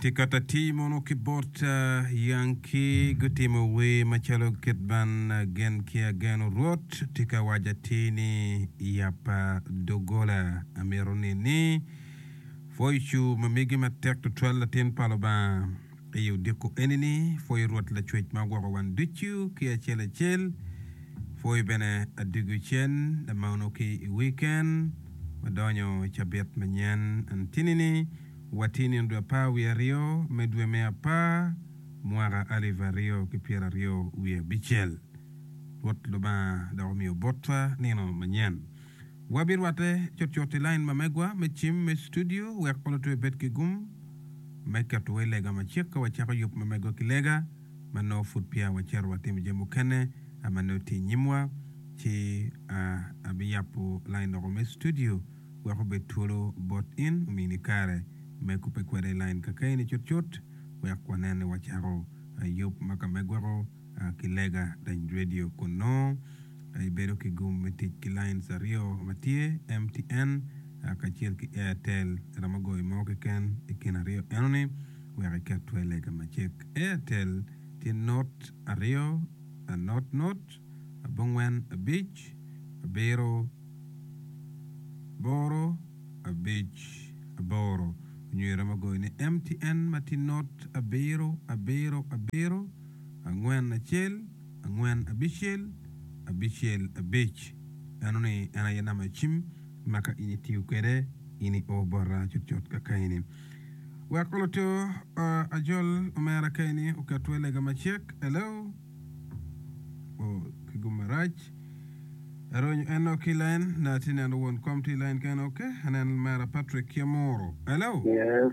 Tikat atir mono ki bot Yanki gutimo wer macalo kit ban Gen ki Ageno Rwot tika waco atir ni Yappa doggola amito nini Foicu ma migi matek tutwal latin pa Lubanga Aye odiko eni ni, Pwoyo Rwot Lacwec ma ogwoko wan ducu ki acel acel, pwoyo bene Adwogi Cen lamono ki i wiken ma donyo i cabit manyen. Antinini watye nino dwe apar wiye aryo me dwe me apar, mwaka alip aryo ki pyera aryo wiye abicel. Rwot Lubanga dok omiyo botwa nino manyen. Wabirwatte cutcut i lain mamegwa me cim me studio wek pe lutwe bed ki gum me ketowa i lega macek ka wacako yub ma megwa ki lega ma nongo pud peya wacito watimo jami mukene ma nongo tye i nyimwa. Ci abiyabo lain doko me studio wek obed twolo bot in, omini kare me kubbe kwede i lain kakeni cutcut wek wanen ni wacako yub ma ka megwako. ki lega dany redio kun nongo ibedo ki gum me tic ki lines aryo ma tye, MTN kacel ki Airtel. Iromo goyo mo keken i kin aryo enoni wek iket twer lega macek. Airtel tye not aryo, not not, abongwen abic, abiro, aboro, abic, aboro. Nyo iromo goyo ni MTN ma tye not abiro, abiro, abiro. angwen acel angwen abicel abicel abic eno ni en aye namba cim ma ka in itiyo kwede in i oo bota cut cut ka ka eni wek oluto ajol omera ka eni oket we lega macek hello o ki gum marac aronyo en o ki line na ti neno won kom ti line kene ok anen mera Patrick Kiamoro hello yes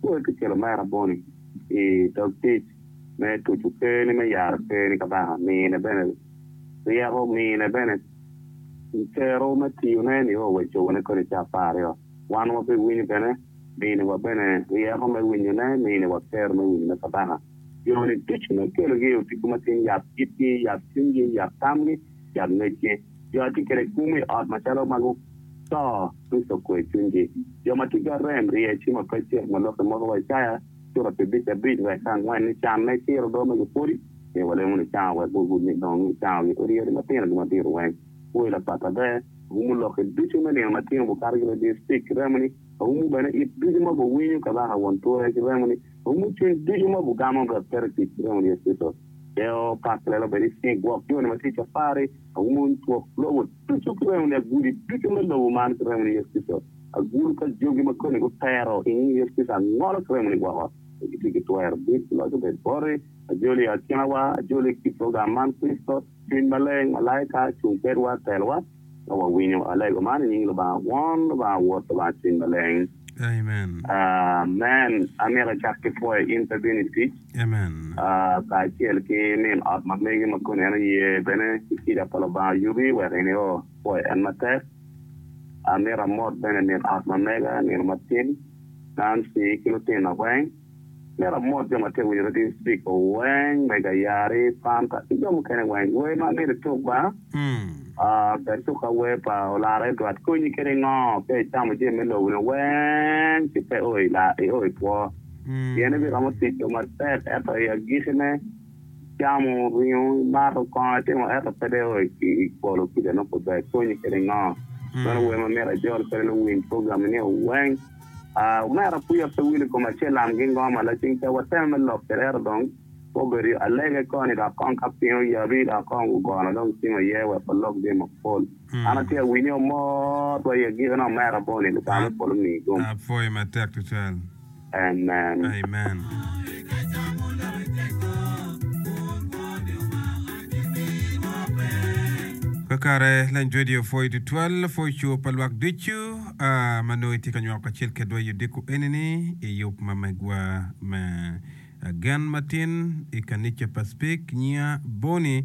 Pol ki celo me araboni i dog tic me tuco kerni me yaro kerni kabaka mine bene ryeko mine bene cero me tiyone nio wa cone kodi ca apar aryo wan wa bi winyo bene mine wa bene ryeko me winyone mine wa kero me winyone kabaka joni ducu me kelogi i otigo matin yab itgi yab cwingi yab tamgi cal ngecce. Jo a tye kwede kwo me ot macalo magu to Kricito kwe cwinygi. Jo ma ticgi arem rye ci ma pe cek ma lokke moko wa Icaya cura pi abic abic wek ka angwen ni can me ciro odo ma gipodi myero walemo ni cango wek gugud ni dong ni cango gi odi yadi matino gi madito weng kwoyi lapat aber awumu lokke ducu me nino matino bukato ki radio stik ki remo ni awumu bene it ducu ma bu winyo kabaka won ture ki remo ni awumu cwiny ducu ma bu gamo wek peto tic ki remo ni Yecu Kricito. Geo Park lelo bene ni gwok joni ma tye i cafari aumo ncwok lobo ducu ki remo ni aguli ducu me lobo man ki remo ni Yecu Kricito. Agulu pa jogi ma koni gutero i nying Yecu Kricito angolo ki remo ni woko pe gitye ki twero. Dit loc obed boti, ajoli i akinawa, ajoli i kit lugam man, Kricito, Cwiny Maleng, malaika, cung kwedwa, telowa. ka wawinyo alego man i nying Lubanga Won, Lubanga Wod, Lubanga Cwiny Maleng. Amen. Amito acak ki pwoyo in pe bino i tic kacel ki min ot ma megi ma koni en oye bene ki kica pa Lubanga yubi wek in io pwoyo en matek. Amito amot bene min ot ma mega nino matin Nancy ki lutino weng. Myero amot jo ma tye ka winyo radio Speak weng, Mega Yari, Panta ki jo mukene weng. Wer ma amyero ituk ba, ber ituka wer pa Olara Edward, Konyi kede ngo ka icamo jami me lobo ni weng ci pe io i two? Pien ibiromo tic-co matek ento i agiki ne icamo ringo, imato kongo, itimo ento pe dong io i polo kica nongo pe ber. Konyi kede ngo? Meno wer ma myero ajol kwede luwiny program-mi nio weng. Aa, omera Apuya pe wilo i kom acel lam gi ngo ma lacing ca wateme me lok ki rero dong obedo yo alege koni dok kong ka piny oyabi dok kong ogono dong cim aye wek walok jami mapol. An atye awinyo amor wa i agikki ni omera Bonnie Lubanga me polo omiyi gum. Apwoyi matek tutwal. Amen. Kakare Lany Twedi opwoyi tutwal, pwoco pa lwak ducu. A Ma nongo itye ka nywako kacel kedwa i odiko eni-ni i yub ma megwa me gen matin i kanica pa Speke, nyinga Bonnie.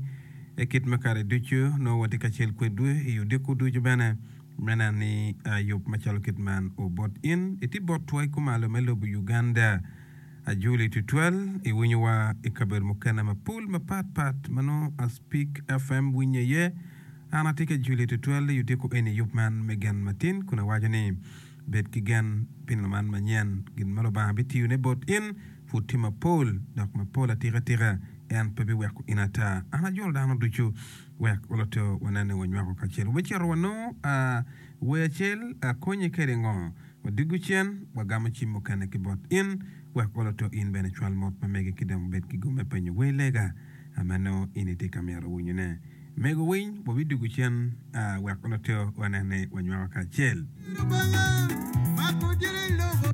Kit ma kare ducu, nongo watye kacel kwedwu i odiko ducu bene me neno ni yub macalo kit man obot. In itye bot twai kumalo me lobo Uganda. Ajuli tutwal, iwinyowa i kabedo mukene mapol mapat pat ma nongo Speke FM winye iye. An atye ka juli tutwal i odiko eni yub man me gen matin kun awaco ni, Bed ki gen pi laman manyen. Gin ma Lubanga bitiyone bot in pud tye mapol dok mapol atika tika. En pe biweko in ata. An ajolo dano ducu wek walote wanene wanywako kacel. Wubicito wanongo wer acel, akonyi kede ngo? Wadiko cen, wagamo cim mukene ki bot in, wek olo to in bene cwal mot pa megi ki dong wubed ki gomme penyo wer lega ma nongo in itye ka myero winyone. Mego winy, wabidiko cen wek olo to wanen ni wanywako kacel. Lubanga mako jiri lobo.